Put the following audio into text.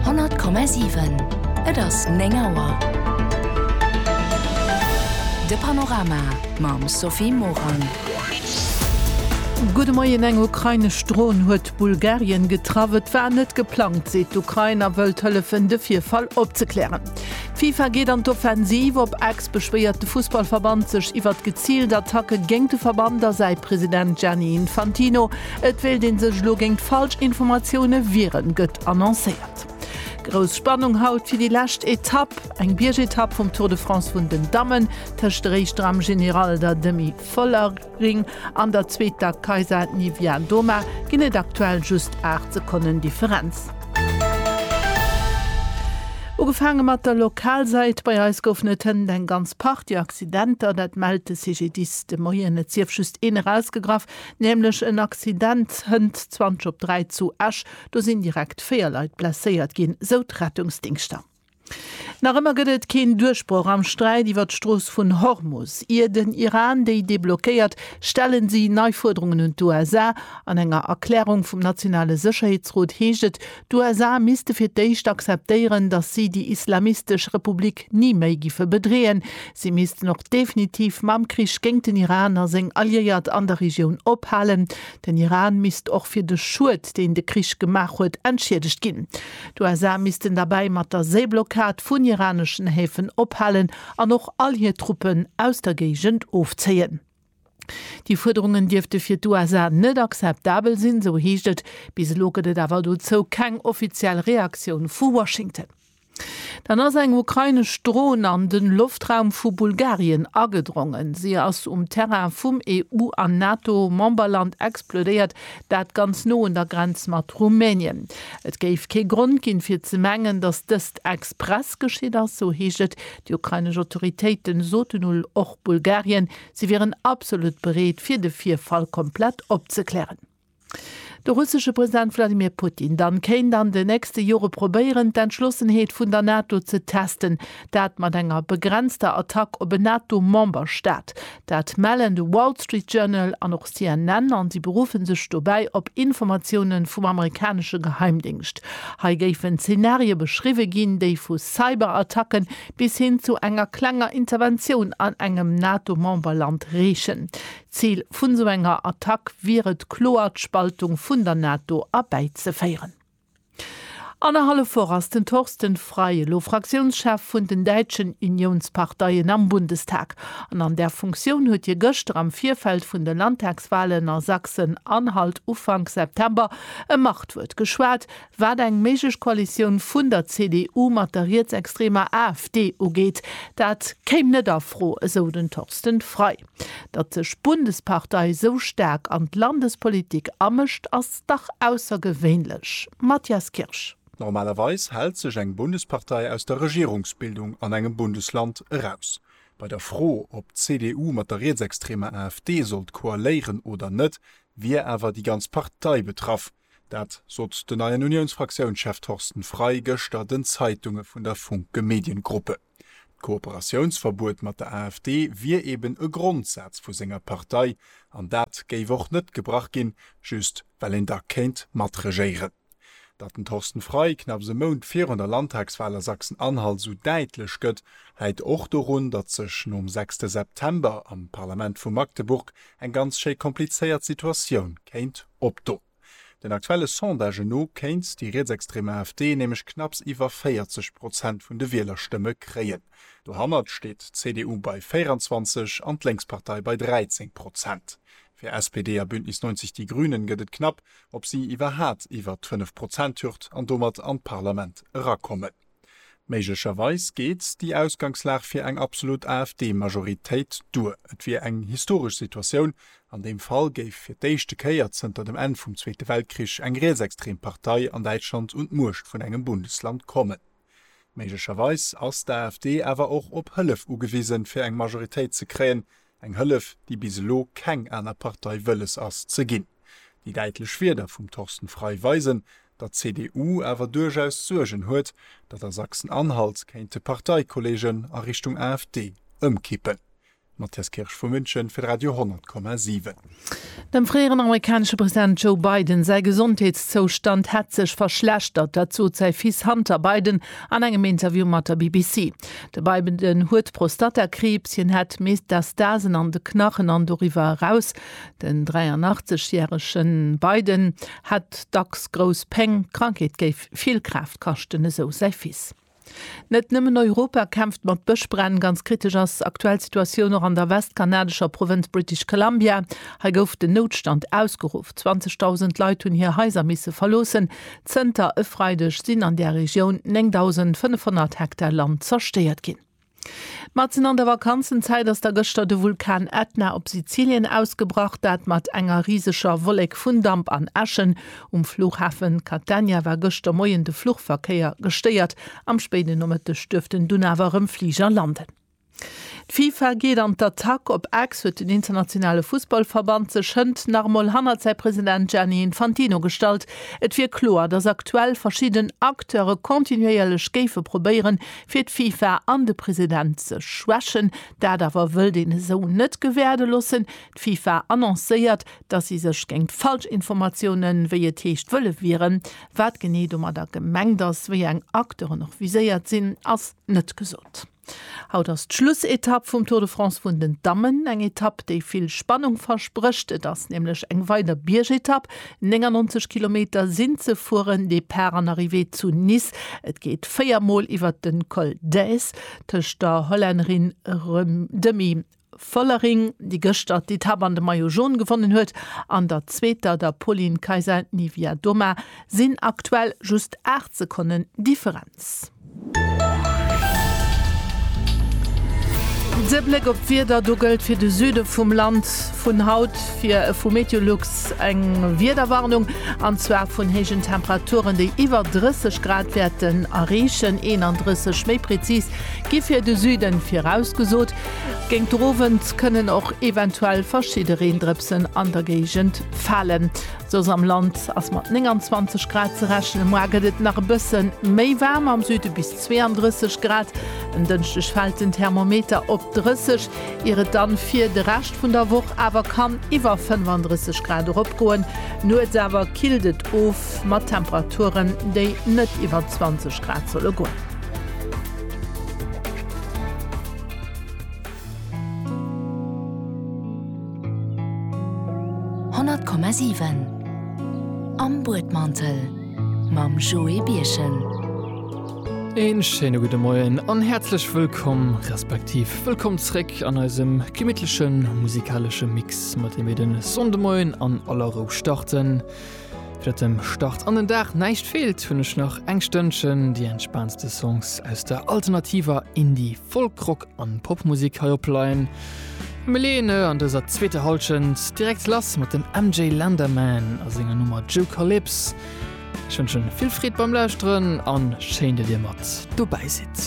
100,7 Et ass 9 Auer. De Panorama mam Sophie Morang. Gudde Moien, Eng ukrainesch Dron huet Bulgarien getraff. Et war net geplangt, seet d'Ukrain a wëllt hëllefen de Virfall opzeklären. D'FIFA geet an d'Offensiv, op Ex beschwéiert de Fussballverband sech iwwert geziilt Attacke géint de Verband a säi President Gianni Infantino. Et wéilt een sech elo géingt falsch Informatioune wieren, gëtt annoncéiert. Grouss Spannung haut fir déi lescht Etapp, eng Biergetapp vum Tour de France vun den Dammen, tëscht der éischter am General, der Demi Vollering, an der zweeter Kaisa Niewiadoma ginn et aktuell just 8 Sekonnen Differenz. Ugefaange mat der Lokalsäit, bei eis goufen et hënt eng ganz Partie Accidenter, dat mellt de CGDIS de Moien. Et sief just een erausgegraff, Nämlech en Accident hënt 20 op 3 zu Esch. Do sinn direkt 4 Leit blesséiert ginn, sou d'Rettungsdingschter. Nach ëmmer gëtt et keen Duerchbroch am Sträit iwwer d'Strooss vun Hormus. Ier den Iran déi deblockéiert, stellen si nei Fuerderungen un d'USA. An enger Erklärung vum nationale Sécherheetsrot heescht et, D'USA misste fir d'éischt akzeptéieren, datt si déi islamistesch Republik ni méi giffe bedreeën. Si missten och definitiv mam Krich géint den Iran a seng Alliéiert an der Regioun ophalen. Den Iran misst och fir de Schued, deen de Krich gemaach huet, entschiedegt ginn. D'USA missten derbäi mat der Séiblockad vun iraneschen Häfen ophalen an och all hir Truppen aus der Géigend ofzéien. Déi Fuerderungen dierfte fir d'USA net akzeptabel sinn, esou heescht et. Bis elo gëtt et awer dozou keng offiziell Reaktioun vu Washington. Dann ass eng ukrainesch Dron an de Loftraum vu Bulgarien agedrongen. Si ass um Terrain vum EU an NATO-Memberland explodéiert, dat ganz no un der Grenz mat Rumänien. Et géif kee Grond ginn, fir ze mengen, datt dëst express geschitt ass, esou heescht et. Déi ukrainesch Autoritéite soten ul, och Bulgarien Si wieren absolut bereet, fir de Virfall komplett opzeklären. De russesche President Wladimir Putin dann kéint an de nächste Jore probéieren, d'Entschlossenheet vun der NATO ze testen. Dat mat enger begrenzter Attack op en NATO-Memberstaat. Dat mellen de Wall Street Journal an och CNN an si beruffen sech dobäi op Informatiounen vum amerikanesche Geheimdéngscht. Hei géifen Zenarie beschriwwe ginn, déi vu Cyberattacken bis hin zu enger klenger Interventioun an engem NATO-Memberland reechen. D'Zil vun esou enger Attack wier et kloer d'Spaltung vun der NATO erbäizeféieren. Annerhallef Woch ass den Thorsten Frei elo Fraktiounschef vun den däitschen Uniounsparteien am Bundestag. An an där Funktioun huet hie gëschter am Virfeld vun de Landtagswalen a Sachsen-Anhalt Ufank September e Machtwuert geschwat, Wat eng méiglech Koalitioun vun der CDU mat der rietsextremer AfD ugeet, dat kéim net a Fro, esou den Thorsten Frei. Datt sech d'Bundespartei esou staark an d'Landespolitik amëscht, ass dach aussergewéinlech. Matthias Kirsch. Normalerweis hält sech eng Bundespartei aus der Regierungsbildung an engem Bundesland eraus. Bei der Fro, ob d'CDU mat der rietsextremer AfD sollt koaléieren oder net, wier awer déi ganz Partei betraff. Dat sot den neien Uniounsfraktiounschef Thorsten Frei gëschter den Zeitunge vun der Funke Mediengruppe. D'Kooperatiounsverbuet mat der AfD wier eben e Grondsaz vu senger Partei an dat géif och net gebrach ginn, just well een da kéint matregéieren. Datt den Thorsten Frei knapps e Mount virun der Landtagswal a Sachsen-Anhalt esou däitlech gëtt, läit och dorun, datt sech nom sechste September am Parlament vu Magdeburg eng ganz schéi komplizéiert Situatioun kéint Op do. Den aktuelle Sondagen no kéint déi rietsextrem AfD nämlech knapps iwwer 40 Prozent vun de Wielerstëmme kréien. Dohannert steet d'CDU bei 24 an d'Lénkspartei bei 13 Prozent. Fir SPD a Bündnis 90 Die Grünen gëtt et knapp, ob si iwwerhaat iwwert d'Fënnef-Prozent-Hürd an domat an d'Parlament erakommen. Méiglecherweis geet déi Ausgangslag fir eng absolut AfD-Majoritéit duer. Et wier eng historesch Situatioun, an deem Fall géif fir d'éischte Kéier zënter dem Enn vum Zweete Weltkrich eng rietsextrem Partei an Däitschland un d'Muecht vun engem Bundesland kommen. Méiglecherweis ass d'AfD awer och op Hëllef ugewisen, fir eng Majoritéit ze kréien, Eng Hëllef, déi bis elo keng aner Partei wëlles ass ze ginn. Déi däitlech Wierder vum Thorsten Frei weisen, datt d'CDU awer duerchaus Suergen huet, datt a Sachsen-Anhalt kéinte Parteikollegen a Richtung AfD ëmkippen. Matthias Kirsch vu München fir d'Radio 100,7. Dem fréieren amerikanesche President Joe Biden säi Gesondheetszoustand hätt sech verschlechtert. Dat sot säi Fils Hunter Biden an engem Interview mat der BBC. De Biden huet Prostatakriibs, hien hätt Metastasen an de Knachen an doriwwer eraus. Den 83 järege Biden hätt dacks grouss Péng. D'Krankheet géif vill Kraaft kaschten, esou säi Fils. Net nëmmen Europa kämpft mat Bëschbränn. Ganz kritesch ass aktuell d'Situatioun och an der westkanadescher Provënz British Columbia. Hei gouf den Noutstand ausgeruff. 20.000 Leit hunn hir Haiser misse verloossen. Zënter e Freideg sinn an där Regioun 9.500 Hektar Land zerstéiert ginn. Matzen an der Vakanzenzäit ass da gëschter de Vulkan Ätna op Sizilien ausgebrach. Dat mat enger riseger Wollek vun Damp an Äschen. Um Flughafe Catania war gëschter Moien de Fluchverkéier gestéiert. Am spéiden Nomëtteg duerften dunn awer erëm Fliger landen. D'FIFA geet an d'Attack, Op X huet den internationale Fussballverband sech hënt nach emol hannert säi President Gianni Infantino gestallt. Et wier kloer, datt aktuell verschidden Acteure kontinuéierlech géife probéieren, fir d'FIFA an de President ze schwächen. Dat awer wëllt een esou net gewäerde loossen. D'FIFA annoncéiert, datt si sech géint Falschinformatiounen, wéi et heescht, wëlle wieren. Wat genee domadder gemengt ass, wéi eng Acteuren och viséiert sinn, ass net gesot. Haut ass d'Schlussetapp vum Tour de France vun den Dammen. Eng Etapp, déi vill Spannung versprécht. Et ass nämlech eng weider Biergetapp, 99 Kilometer sinn ze fueren, Depart an Arrivée zu Nice. Et geet véier Mol iwwert den Col d'Èze tëscht der Hollännerin Demi Vollering, déi gëschter d'Etapp an de Maillot Jaune gewonnen huet, an der zweeter, der Pauline Kaisa Niewiadoma, sinn aktuell just 8 Sekonnen Differenz. De Bléck op d'Wieder, do gëllt fir de Süde vum Land vun haut fir vu Meteolux eng Wiederwarnung, an zwar vun héijen Temperaturen, déi iwwer 30 Grad wäerten erreechen, 31 méi prezis gi fir de Süden virausgesot. Géint de Owend kënnen och eventuell verschidde Reendrëpsen an der Géigend falen. Soss am Land ass mat 29 Grad ze rechnen. Moar gëtt et nach e bësse méi waarm, am Süde bis 32 Grad. En Dënschdeg fält den Thermometer op 30, ier et dann fir de Rescht vun der Woch awer kann iwwer 35 Grad eropgoen. Nuets awer killt et of mat Temperaturen, déi net iwwer 20 Grad solle goen. Honnert Komma siwen Am Buedmantel mam Joé Birchen. Een schéine gudde Moien an häerzlech wëllkomm, respektiv wëllkomm zréck an eisem gemittlechen musikalesche Mix, mat deem mir den Sonndemoien an aller Rou starten. Fir datt dem Start an den Dag näischt feelt, hunn ech nach eng Stënnchen déi entspaantste Songs aus der alternativer Indie-Folk-Rock An Popmusik hei op Line. Mir leeën an dëser zweeter Halschent direkt lass mat dem MJ Landerman a senger Nummer Jucalyps. Ech wënschen vill Freed beim Lauschteren an schéin, datt dir mat dobäi sidd.